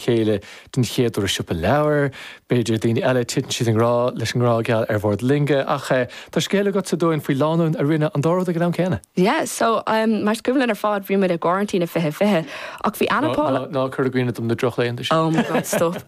chéile den chéad uair i siopa leabhar, b'fhéidir, daoine eile, titeann siad i ngrá leis an ngrá geal ar bhord loinge, ach tá scéal agatsa dúinn faoi lánúin a rinne an dá rud ag an am céanna. Yeah, so, em, mar is cuimhin linn ar fad, bhí muid i gcoraintín i fiche fiche, ach bhí Ana Paula. Ná, ná, ná cuir i gcuimhne dom na drochlaethanta sin. Oh my God, stop.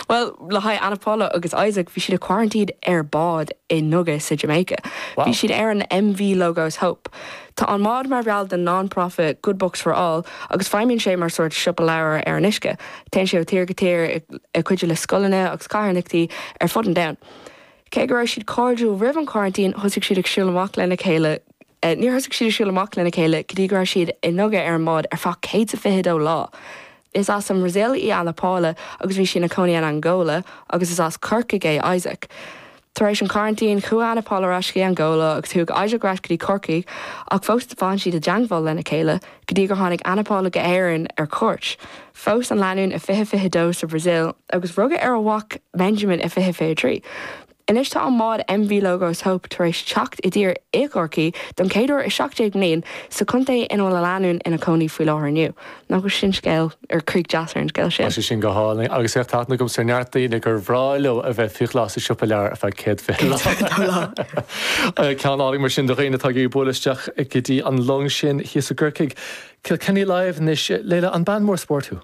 Bhuel, le haghaidh Ana Paula agus Isaac, bhí siad i coraintín ar bád i nduga sa Jamaica. Wow. Bhí siad ar an MV Logos Hope. Tá an mbád mar bhall den non-profit Good Books for All agus feidhmíonn sé mar sórt siopa leabhar ar an uisce. Téann sé ó thír go tír ag cuidiú le scoileanna agus carthanachtaí ar fud an domhain. Cé go raibh siad cairdiúil roimh an coraintín, thosaigh siad ag siúl amach lena chéile, níor thosaigh siad ag siúl amach lena chéile go dtí go raibh siad i nduga ar an mbád ar feadh 122 lá. Is as an mBrasaíl í Ana Paula agus bhí sí ina cónaí in Angóla agus is as Corcaigh é Isaac. Tar éis an coraintín, chuaigh Ana Paula ar ais go dtí Angóla agus chuaigh Isaac ar ais go dtí Corcaigh ach fós d'fan siad i dteangmháil lena chéile go dtí gur tháinig Ana Paula go hÉirinn ar cuairt. Phós an lánúin i fiche fiche dó sa Bhrasaíl agus rugadh ar a mhac Benjamin i fiche fiche trí. Anois tá an mbád MV Logos Hope tar éis teacht i dtír i gCorcaigh don chéad uair i 17 mbliain, sa chontae ina bhfuil an lánúin ina cónaí faoi láthair inniu. Nach bhfuil sin scéal, or críoch deas ar an scéal sin? Tá sé sin go hálainn. Agus féach, tá aithne agamsa ar neart daoine gur bhreá leo a bheith faoi ghlas i siopa leabhar ar feadh céad fiche lá. Céad fiche lá. Ceann álainn mar sin do dhaoine atá ag bualadh isteach go dtí an long sin thíos i gCorcaigh. Kilkenny Live anois. Leila, an bean mór spóirt thú?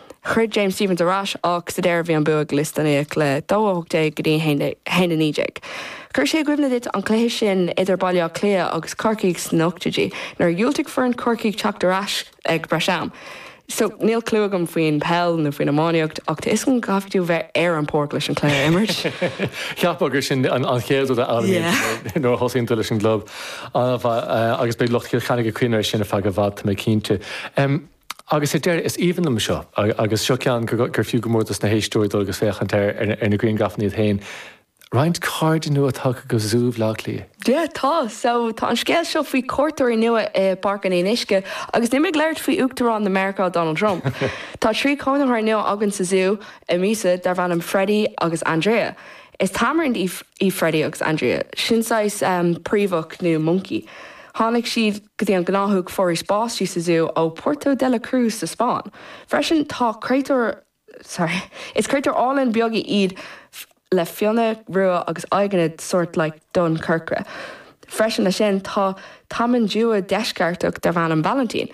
Throid James Stephens ar ais ach sa deireadh bhí an bua ag Lisdowney le 2-18 go dtí 1-19. Chuir sé i gcuimhne duit an cluiche sin idir Baile Átha Cliath agus Corcaigh sna nochtaidí nuair a dhiúltaigh foireann Chorcaí teacht ar ais ag breis am. So, níl clue agam faoin peil nó faoin iománaíocht ach tá a fhios agam go gcaithfidh tú bheith ar an páirc leis an cluiche a imirt. Cheapfá gur sin an chéad rud a fhoghlaimíonn tú nuair a thosaíonn tú leis an gclub agus beidh lucht Chill Chainnigh ag cuimhneamh ar sin ar feadh i bhfad, tá mé cinnte. Agus ar deireadh, is aoibhinn liom seo, agus seo ceann gur fiú go mór dos na héisteoirí dul agus féachaint air ar na griangrafanna iad féin, roinnt cairde nua tagtha go Zú Bhleá Cliath. Yeah tá, so tá an scéal seo faoi cuairteoirí nua i bPáirc an Fhionnuisce agus níl mé ag labhairt faoi Uachtarán na Meiriceá Donald Trump. Tá trí chónaitheoir nua againn sa Zú an mhí seo darb ainm Freddie agus Andrea. Is tamarind í Freddie agus Andrea, sin saghas príomhach nó monkey. Tháinig siad go dtí an gnáthóg foraois báistí sa zú ó Puerto de la Cruz sa Spáinn. Freisin tá créatúir sorry is créatúir álainn beaga iad le fionnadh rua agus aghaidheanna sort like donn corcra. Freisin leis sin tá tamanduá deisceartach darb ainm Valentin.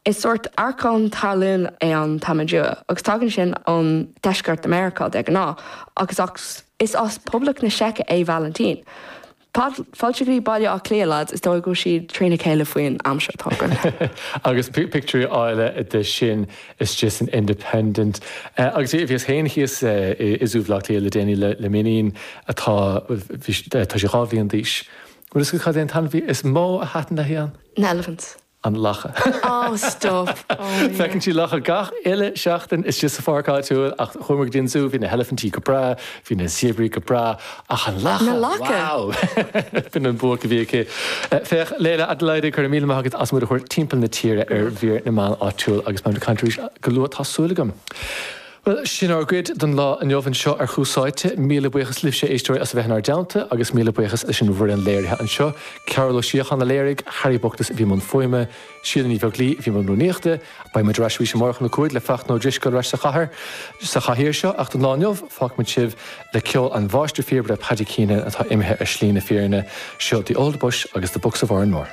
Is sórt arcán talún é an tamanduá agus tagann sin ón deisceart de Meiriceá de ghnáth agus is as Poblacht na Seice é Valentin. Fáilte go dtí Baile Átha Cliath lads, is dóigh go bhfuil siad trína chéile faoin am seo. Tá go. Agus pictiúirí áille de sin istigh san Independent. Agus bhíos féin thíos i Zú Bhleá Cliath le déanaí le m'iníon atá, bhí, tá sí dhá bhliain d'aois. Bhfuil fhios agat cad é an t-ainmhí is mó a thaitin léi ann? Na elephants. an lacha. Oh stop! Oh my God. Feiceann sí lacha gach uile seachtain istigh sa pháirc áitiúil ach chuamar go dtí an zú, bhí na heilifintí go breá, bhí na zéabraí go breá ach an lacha, Na lacha! wow! B'in an buaic a bhí aici. Eh, Féach, Leila Adelaide, go raibh míle maith agat as muid a thabhairt timpeall na tíre ar Mhír na Meán Áitiúil agus beimid ag caint arís go luath, tá súil agam. Bhuel, sin ár gcuid don lá inniu anseo ar Thús Áite. Míle buíochas libhse, a éisteoirí, as a bheith inár dteannta agus míle buíochas leis an bhfoireann léirithe anseo, Cearbhall Ó Síocháin a léirigh, Harry Bookless a bhí i mbun fuaime, Síle Ní Bheaglaoich a bhí i mbun rúnaíochta. Beidh muid ar ais arís amárach óna cúig le Fachtna Ó Drisceoil ar ais sa chathair, sa chathaoir seo ach don lá inniu fágfaimid sibh le ceol an mháistir phíobaire Paddy Keenan atá imithe ar shlí na fírinne. Seo The Old Bush agus The Bucks of Oranmore.